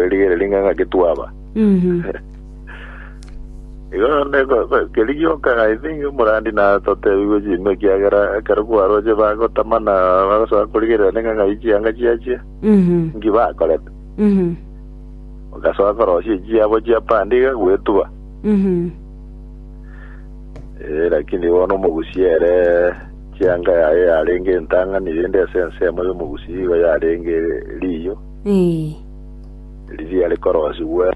Erigere ring'ang'a getwaba. Mhm. Igo nde ko- ko- keri gioka I think omorandi na totebigwe chimbe ekiagera ekero kwaroche bagotamana bagosoa korigerera neng'ang'a yi chianga chiachia Mhm. nki bakorete. Mhm. Ogasoa korosia echiabo chia pande iga gwetuba. Mhm. Eh, lakini bono omogusi ere chianga yaye yarenge entang'ani rende ase ensemo y'omogusi igo yarenge riyo. Eh. riria rikoroosigwe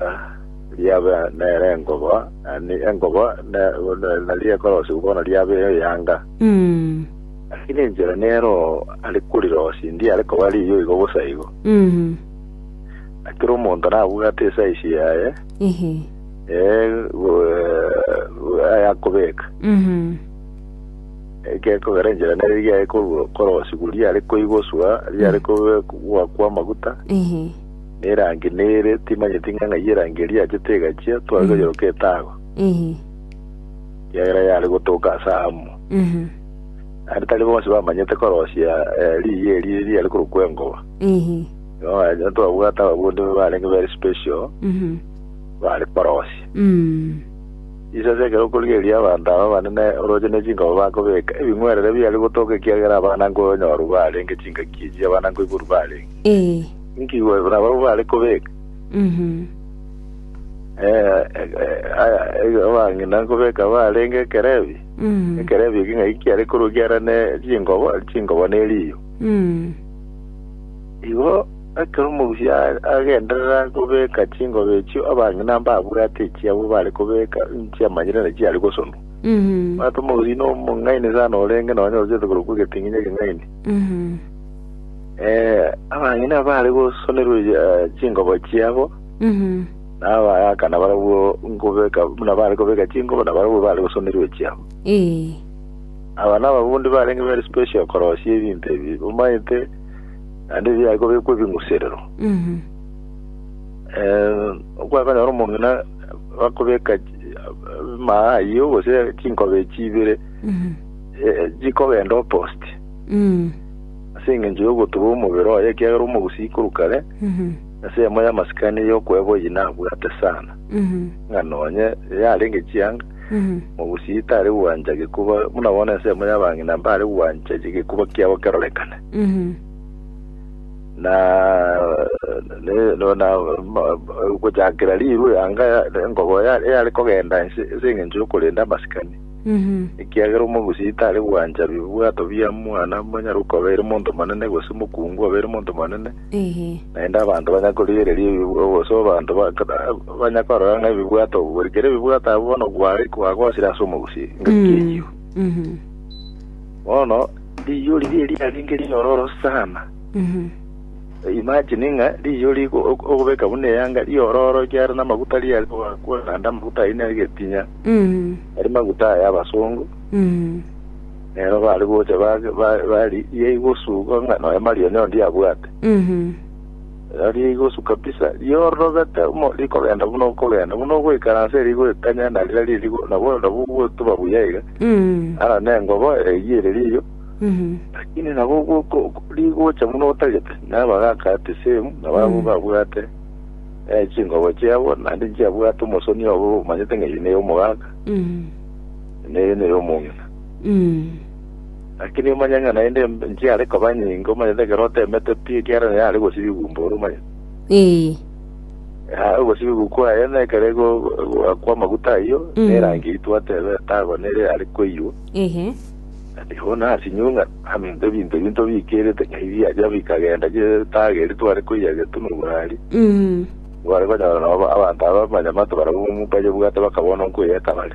riabe nere engoba, yaani engoba ne- ne- naria ekorosigwe bono riabe eyanga Mm. lakini enchera nero ari korirosia ndi ari koba riiyo igo bosa igo Mhm. akira omonto nabwate esaisi yaye Ehe. eh, go- eh, ayakobeka Mhm. Egekogera enchera nere riaye korwa korwa siku riare koigoswa riare kobe gwa kwa maguta Ehe. nerangi nere timanyeti ng'a ng'ai erangi eria yachete egachia tware toyeroka etago Ehe. kiagera yare gotoka ase amo Ehe. naende tari bonsi bamanyete korosia eh, riiyi eri riare korokwa engoba Ehe. Igo twabwate ababundi barenge very special Ehe. bare korosia Mm. Inse ase ekero okorigereria abanto aba abanene orooche ne chinkoro bakobeeka ebing'werere biaria gotooka ekiagera abana nkoyo onyorwe barenge chingaki echi abana nkoiborwa barenge. Ee. Inki igwekora ababwo bare kobeeka? Mhm. Eh, eh, eh, aya, eh, abang'ina nkobeeka barenge ekerebi. Mhm. Ekerebi eki ng'ai kiare korwa kiarane chinkobo, chinkobo neriyo. Mhm. Igo ekero omogusi agenderera kobeka chingobe echio abang'ina mbabwate echiabo bare kobeka nchiamanyire naki chiare gosonwa. Mhm. Omanyete omogusi nomong'aini sana orenge nonye orochete korwa kwa egeting'inyi ekeng'aini. Mhm. Eh, abang'ina bare gosonerwa eh, chingobo chiabo Mhm. nabayakana barabwo nkobeka buna bare kobeka chingobo na barabwo bare gosonerwa echiabo. Eh. Aba nababundi barenge very special korosia ebinto ebi omanyete naende eria yaye kobekwa ebing'userero. Eh, okwakonyora omong'ina bakobeka chi- maa ayio gose chinkoba echi ibere eh, chikogenda opost ase eng'encho y'ogotuba omobere oye ekiagera omogusi ikoru kare ase eyemo y'amasikani y'okweba oyio nabwate sana ng'a nonye yarenge chianga Mogusie tare gwancha gekuba, buna bono ensemo y'abang'ina mbare gwancha gekuba kiabo kerorekane. Na ne- no- na ma- ma- gochakera riru yanga ya- engobo ya- yare kogenda ense ense eng'encho y'okorenda amasikani ekiagera omogusie tare gwancha bibwato bia mwana monyare okoba ere monto monene gose mokungu oba ere monto monene Ee. Naende abanto banya korigereria ebibw- gose abanto ba- ba- banya korora ng'a ebibwato obo, bori kera ebibwato abwo bono bware kwagosire ase omogusii, engaki Mm. eyio. Mhm. Bono riiyo riria riarenge riororo sana. Mhm. Imagine ng'a riiyo rigo ok- okobeka buna eyanga riororo riare namaguta riare koakwa naende amaguta ayio nere getinya, Mhm. ari maguta aya abasongo. Mhm. Nero bare gocha bage- ba- bari ria igosuga ng'a nonya Maria onye onde abwate. Mhm. Ero ria igosu kabisa, riororobete mo rikogenda buna okogenda, buna ogoikaransa eri goikanya na rira riri go- nabo nabo gotuba buya iga, Mhm. ara nengobo eyio ere riyo, Mhm. lakini nabo goko- rigocha buna otagete, nabo bagaka at the same, nabo abwo Mm. babwate eh, chingobo chiabo, naende nchiabwate omosoni obo omanyete ng'a eye neye omogaka, Mhm. neye neye omong'ina. Lakini omanye ng'a naende em- enchie are koba nyinge, omanyete ekero otemete pi, ekiagera naye are gosiba igumba ore, omanyete. Ee. Yaya ogosiba igumba kwaye, na ekero ego- egoakwa amaguta ayio, na erangi eyio twateba etago nere are koiywa, Ehe. ati bono asinywe ng'a aminto ebinto ebio ntobikerete ng'a ebi biachia bikagenda chie etago eria tware koiyia getwe na oborwaria, nkware konyora nabo abanto aba abanyamato barabwo baria obwate bakaba bono nkoyia ekabare.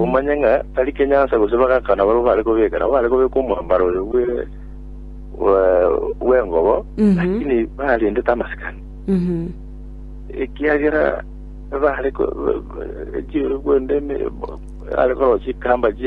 Omanye ng'a tari kenyansa gose bagakana barabwo bare kobeka, nabo bare kobeka omwambaro oyo bwe bwe- bw'engobo, Mhm. lakini barendete amasikani. Mhm. ekiagera bare ko- ba- ba- chi- bwende eme- are korosia chikamba chie